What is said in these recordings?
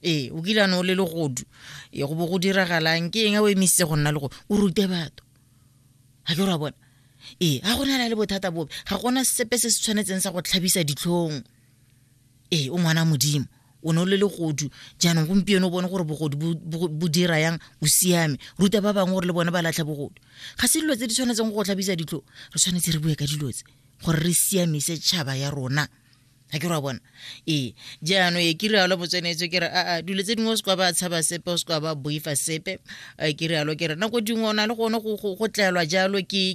ee o kile a ne o le legodu e go bo go diragalang ke eng a o emisitse go nna le go o rute batho ga ke ra bona ee ga go nela le bothata bobe ga gona sepe se se tshwanetseng sa go tlhabisa ditlhong ee o ngwana modimo o ne o le legodu jaanong gompieno o bone gore bogodu bo dira yang o siame ruta ba bangwe gore le bone ba latlhe bogodu ga se dilo tse di tshwanetseng go go tlhabisa ditlho re tshwanetse re bue ka dilo tse gore re siamise tšhaba ya rona ga ke ra bona ee jaano e ke rialo bo tsenetse ke re aa dilo tse dingwe o sekwa ba tshaba sepe o sekwa ba boifa sepe e ke rialo ke re nako dingwe o na le gone go tlelwa jalo ke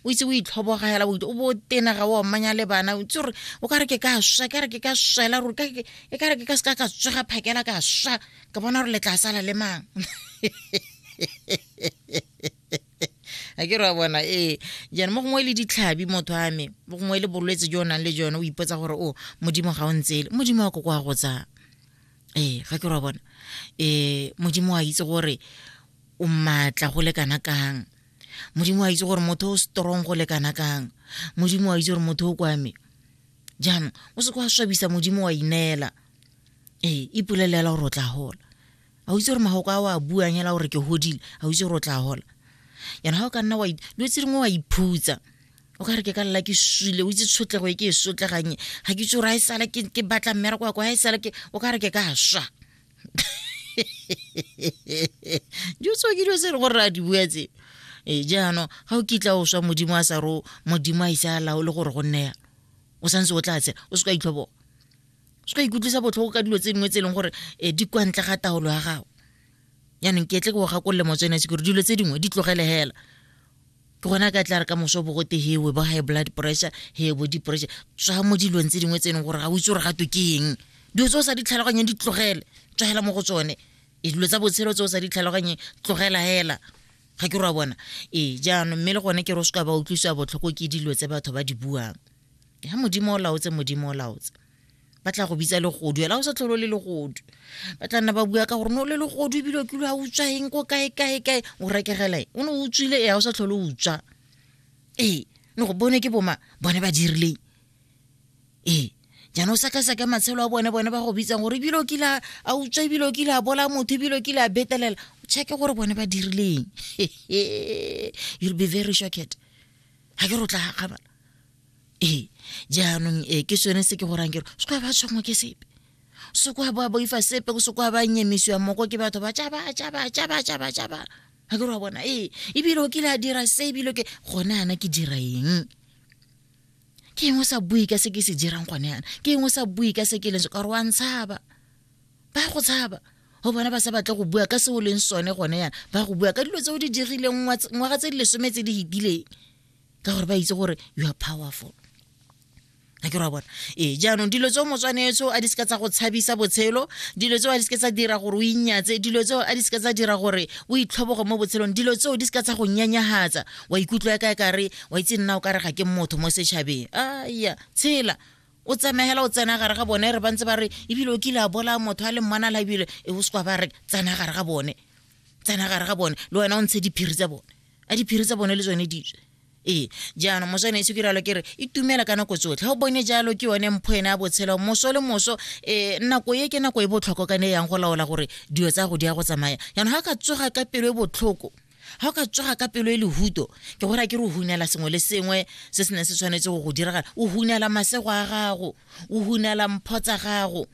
o itse o itlhobogela o bo tena ga o mmanya le bana o itse gore o ka re ke ka swa e ka re ke ka swela ruri e ka re ke ka seka ka tswega phakela ka swa ka bona gore le tla sala le mang a ke re wa bona ee jaanong mo gongwe le ditlhabi motho a me mo gongwe le bolwetse jo o nang le jone o ipotsa gore o modimo ga o ntsele modimo wa ko kwa go tsaya ee ga ke re wa bona um modimo a itse gore o maatla go le kana kang modimo a itse gore motho o strong go le kana kang modimo a itse gore motho o kwame jaanong o se kwa swabisa modimo wa ineela ee ipolelela gore o tla gola a o itse gore magoko a o a buang hela gore ke godile a o itse gore o tla gola yana ga o ka nna dilo tse dingwe wa iphutsa o ka re ke ka lela ke swile o itse tshotlego e ke e sotleganye ga ke itse gore a e sala ke batla mmereko ya ko ga e sala o ka re ke ka swa dilo tseo ke dilo tse e leng gore re a di bua tse ee jaanong ga o kitla o swa modimo a sa ro modimo a ise a laole gore go nneya o santse o tla tsela o se ka itlhoboga se ka ikutlwisa botlhoko ka dilo tse dingwe tse e leng gore um di kwa ntle ga taolo ya gago yaanong ke tle ke go gakolole motswene se kore dilo tse dingwe di tlogele fela ke gona ka tla re ka moso bo gote he bo high blood pressure he bo di pressure tswa mo dilong tse dingwe tse e leng gore ga o itse gore ga to ke eng dilo tse o sa di tlhaloganyeng di tlogele tswagela mo go tsone e dilo tsa botshelo tse o sa di tlhaloganyeng tlogela fela ga ke ra bona ee jaanong mme le gone ke re o se ka ba utlwisiwa botlhoko ke dilo tse batho ba di buang ya modimo o laotse modimo o laotse ba tla go bitsa legodu ela o sa tlholo le legodu ba tla nna ba bua ka gore no le legodu ebile o kile a utswa eng ko kae kae kae o rekegela e o ne o utswile ea o sa tlholo utswa ee ne go bone ke boma bone ba dirileng ee jaanong o sekaseka matshelo a bone bone ba go bitsang gore ebile o kile a utswa ebile o kile a bola motho ebile o kile a betelela checke gore bone ba dirileng you'll be very shocked ga ke rotla gakgabala ee jaanong ee ke sone se ke gorang kero se kwa ba tshwangwa ke sepe se kwa ba boifa sepe se kwa ba nyemisiwa moko ke batho ba tšaba tšaba tšaba tšaba tšaba ga ke re wa bona ee ebile o kile a dira se ebile ke gone ana ke dira eng ke engwe sa bui ka se ke se dirang gone yana ke engwe sa bui ka se ke leng se ka gore wa ntshaba ba go tshaba go bona ba sa batle go bua ka se o leng sone gone yana ba go bua ka dilo tse o di dirileng ngwaga tse di lesome tse di fetileng ka gore ba itse gore you are powerful a ke ra bona ee jaanong dilo tseo motswanetso a di seka tsa go tshabisa botshelo dilo tseo a di seka tsa dira gore o inyatse dilo tseo a di seka tsa dira gore o itlhobogo mo botshelong dilo tseo di seka tsa go nyanyagatsa wa ikutlwa ya ka kare wa itse nna o kare ga ke motho mo setšhabeng aya tshela o tsena hela o tsena gare ga bone re ba ntse ba re ebile o kile a bola motho a le mmana la ebile e o sekwa ba re tsena gare ga bone tsena gare ga bone le wena o ntshe diphiri tsa bone a diphiri tsa bone le tsone ditswe ee jaanong moswane e se kiralo ke re itumela ka nako tsotlhe o bone jalo ke yone mpho ene a botshelo moso le moso um nako e ke nako e botlhoko ka ne e yang go laola gore dilo tsa go di ya go tsamaya jaanong ga ka tsoga ka pelo e botlhoko ga o ka tsoga ka pelo e lehuto ke gore ke re o hunela sengwe le sengwe se se neng se tshwanetse go go diragala o hunela masego a gago o hunela mpho tsa gago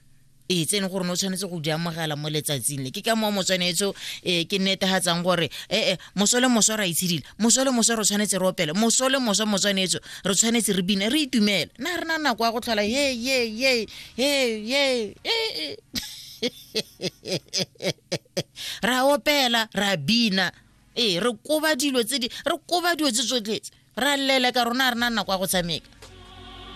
ee tse e leng gore ne o tshwanetse go di amogela mo letsatsing le ke ka moo motswanetso um ee, ke netagatsang gore ee eh, moso le moso ra itshedile moso le moso re tshwanetse re opele moso le moso motswanetso re tshwanetse re bine re itumele na re na nako ya go tlhola ye ye ye ye ye ee ra opela ra bina ee re koba dilo tse di re koba dilo tse tsotletse ra lele ka rona a re na nako ya go tshameka